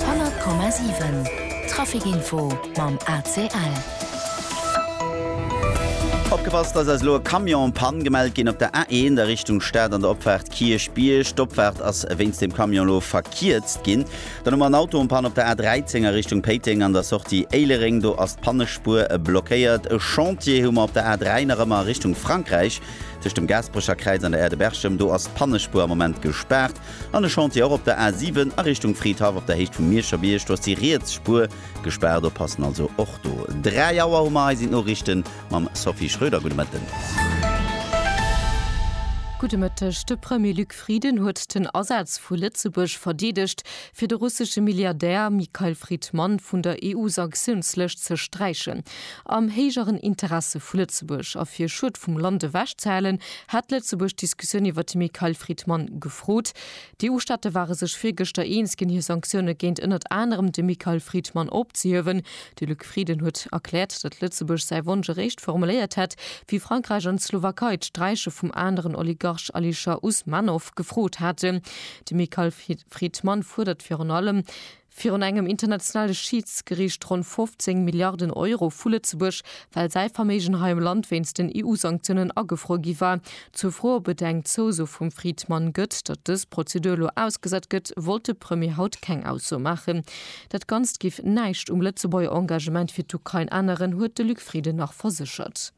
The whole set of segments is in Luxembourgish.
100,7 Trafic-Info mam ACL. Opgepasst, Eis ass elo e Camion en Panne gemellt ginn op der A1 a Richtung Stad an der Opfaart Kierchbierg. D'Opfaart ass wéinst dem Camion elo verkierzt ginn. Dann hu mer en Auto en Panne op der A13 a Richtung Péiteng an der Sortie Éilereng. Do ass d'Pannespuer blockéiert. E Chantier hu mer op der A3 nach ëmmer a Richtung Frankräich tëscht dem Gaasperecher Kräiz an der Aire de Berchem. Do ass d'Pannespuer am Moment gespaart. An e Chantier och op der A 7 a Richtung Fridhaff op der Héicht vum Mierscher Bierg. Do ass déi riets Spuer gespaart. Oppassen also och do. 3 Auer hu mer. Hei sinn d'Noriichten mam Sophie Schröder. Gudde Mëtten. Gudde Mëtteg. De Premier Luc Frieden huet den Asaz vu Lëtzebuerg verdeedegt, fir de russesche Milliardär Mikhail Fridman vun der EU-Sanktiounslëscht ze sträichen. Am héijeren Interesse vu Lëtzebuerg a fir Schued vum Land ewech ze halen, hat Lëtzebuerg d'Diskussioun iwwert de Mikhail Fridman gefrot. D'EU-Staate ware sech virgëschter eens ginn, hir Sanktioune géint ënnert anerem de Mikhail Fridman opzehiewen. De Luc Frieden huet erkläert, datt Lëtzebuerg säi Wonsch eréischt formuléiert hätt, wéi Frankräich an d'Slowakei d'Sträiche vum aneren Oligarch Alisher Usmanov gefrot haten. De Mikhail Fridman fuerdert virun allem, virun engem internationale Schiidsgericht ronn 15 Milliarden Euro vu Lëtzebuerg, well säi Verméigen hei am Land wéinst den EU-Sanktiounen agefruer gi war. Zur Fro, ob et eng Zouso vum Friedmann gëtt, datt dës Prozedur elo ausgesat gëtt, wollt de Premier haut keng Ausso maachen. Dat Ganzt géif näischt um Lëtzebuerger Engagement fir d'Ukrain änneren, huet de Luc Frieden nach verséchert.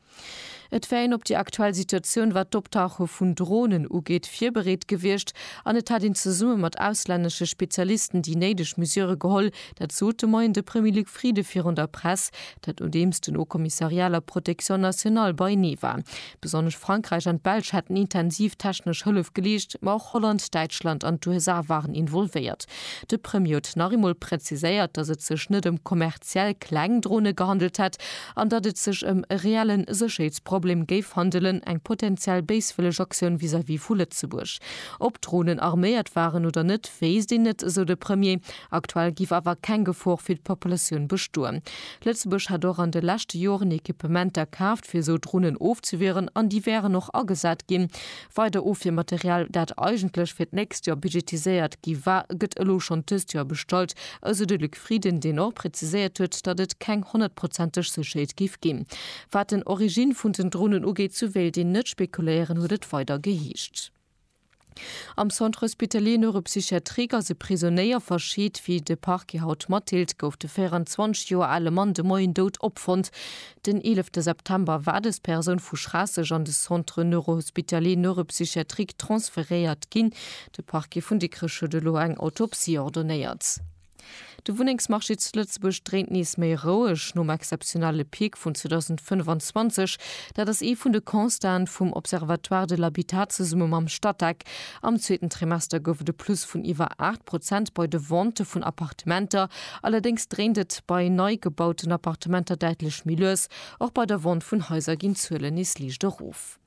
Et wär een op déi aktuell Situatioun, wat d'Optauche vun Dronen ugeet, virbereet gewiescht an et hätt een zesumme mat auslännesche Spezialisten déi néideg Mesure geholl. Dat sot de Moien de Premier Luc Frieden virun der Press, dat nodeems den Haut-Kommissariat la Protection Nationale beienee war. Besonnesch Frankräich an d'Belsch hätten intensiv technesch Hëllef geleescht, ma och Holland, Däitschland an d'USA waren involvéiert. De Premier huet nach eemol präziséiert, datt et sech net ëm kommerziell kleng Drone gehandelt hätt an datt et sech ëm e reelle Sécherheetsproblem géif handelen, eng potenziell béiswëlleg Aktioun vis-à-vis vu Lëtzebuerg. Ob d'Dronen arméiert waren oder net, wéisst een net, esou de Premier. Aktuell géif awer keng Gefor fir d'Populatioun bestoen. Lëtzebuerg hätt och an de leschte Joren Equipementer kaaft, fir esou Dronen ofzewieren, an déi wären och agesat ginn. Weider Ofwiermaterial, dat eigentlech fir d'nächst Joer budgetiséiert gi war, gëtt elo schonn dëst Joer bestallt, esou de Luc. Frieden, deen och präziséiert huet, datt et keng honnertprozenteg Sécherheet géif ginn, wat den Origine vun den Dronen ugeet, sou wéilt een net spekuléieren, huet et weider geheescht. Am Centre hospitalier neuropsychiatrique ass e Prisonéier verscheet. Wéi de Parquet haut matdeelt, gouf de 24 Joer ale Mann de Moien dout opfonnt. Den 11 September war dës Persoun vu Schraasseg an de Centre neurohospitalier neuropsychiatrique transferéiert ginn. De Parquet vun Dikrech huet elo eng Autopsie ordonéiert. De Wunnengsmarché zu Lëtzebuerg dréint nees méi roueg nom exzeptionelle Peak vun 2025. Dat ass ee vun de Constaten vum Observatoire de l'habitat zesumme mam Statec. Am zweeten Trimester gouf et e Plus vun iwwer 8 Prozent bei de Ventë vun Appartementer. Allerdéngs dréint et bei nei gebauten Appartementer däitlech méi lues. Och bei der Vente vun Haiser ginn d'Zuelen nees liicht erof.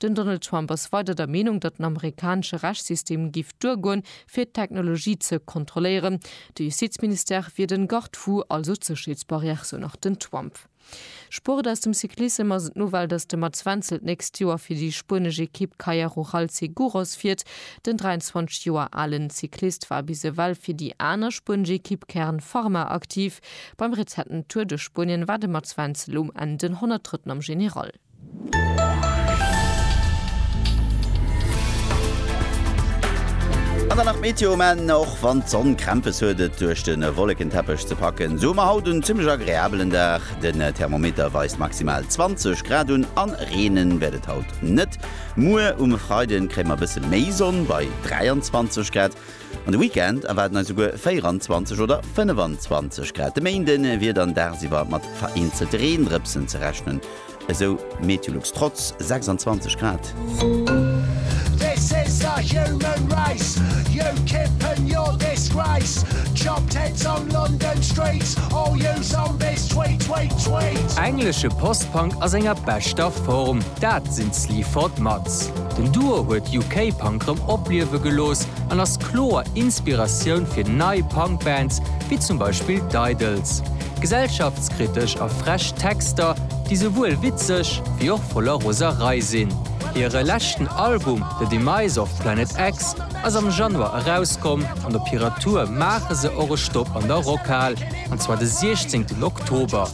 Den Donald Trump ass weider der Meenung, datt den amerikanesche Rechtssystem giff duergoen, fir d'Technologie ze kontrolléieren. De Justizministère wier den Garde-fou, also d'Sécherheetsbarrière, sou nach den Trump. Sport Aus dem Cyclissem ass et d'Nouvelle, datt de Mats Wenzel d'nächst Joer fir déi spuenesch Ekipp Kaja Rural Seguros fiert. Den 23 Joer alen Cyclist war bis ewell fir déi aner spuenesch Ekipp Kern Pharma aktiv. Beim rezenten Tour duerch Spuenien war de Mats Wenzel um Enn den 103. am General. An dann nach d'Meteo, men och wann d'Sonn Krämpes huet et duerch de Wollekenteppech ze packen, sou hu mer haut en zimmlech agreabelen Dag. Den Thermometer weist maximal 20 Grad un an reenen wäert et haut net. Muer um Freiden kréie mer e bësse méi Sonn bei 23 Grad An de Weekend erwaarden eis esouguer 24 oder 25 Grad. De Méinde wier dann dagsiwwer mat vereenzelte Reendrëpsen ze rechnen, esou Meteolux. Trotz 26 Grad. Englesche Post-Punk a senger beschter Form, dat sinn Sleaford mat. Hits. Den Duo huet UK-Punk rëm opliewe gelooss an ass kloer Inspiratioun fir nei Punk-Bands, wéi zum Beispill d'Idles. Gesellschaftskritesch a frech Texter, déi souwuel witzeg, wéi och voller Roserei sinn. Hire leschten Album The Demise of Planet X ass am Januar erauskomm an op hirer Tour maache se och e Stopp an der Rockhal, an zwar de 16 Oktober.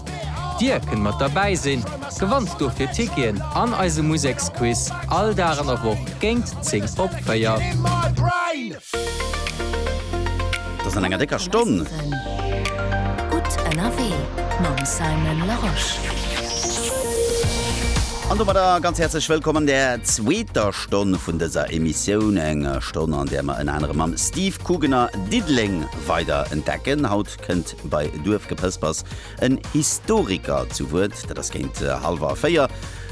Dir kënnt mat derbäi sinn. Gewanns dofir Ticketen an eise Museksquiz all Dag an der Woch géint 10 op 4. An domadder ganz häerzlech Wëllkomm an der zweeter Stonn vun dëser Emissioun. Eng Stonn, an där mer ënner anerem mam Steve Kugener Diddeleng weider entdecken. Haut kënnt bei Duerfgepëspers En Historiker zu Wuert, dat ass géint hallwer 4.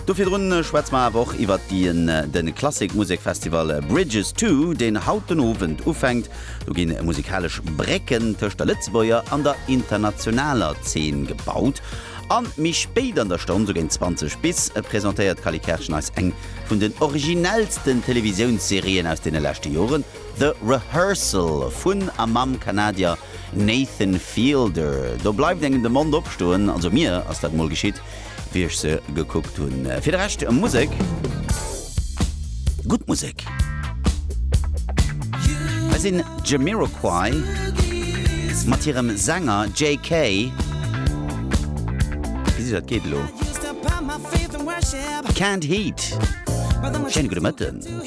Do virdrun schwätze mer awer och iwwert dien den Klassik Musekfestival Bridges to, deen haut den Owend ufänkt. Do ginn musikalesch Brécken tëscht der Lëtzebuerger an der internationaler Zeen gebaut. An méi spéit an der Stonn, sou géint 20 bis, presentéiert d'Cally Kertschen eis eng vun den originellsten Televisiounsserien aus deene leschte Joren, The Rehearsal vun a mam Kanadier Nathan Fielder. Do bleift engem de Mond opstoen, also mir ass dat mol geschitt, wéi ech se gekuckt hunn. Fir de Rescht Musek, gutt Musek. Hei sinn d'Jamiroquai mat hirem Sänger Jay Kay. Gesitt dat geet elo. Canned Heat. Schéine gudde Mëtten.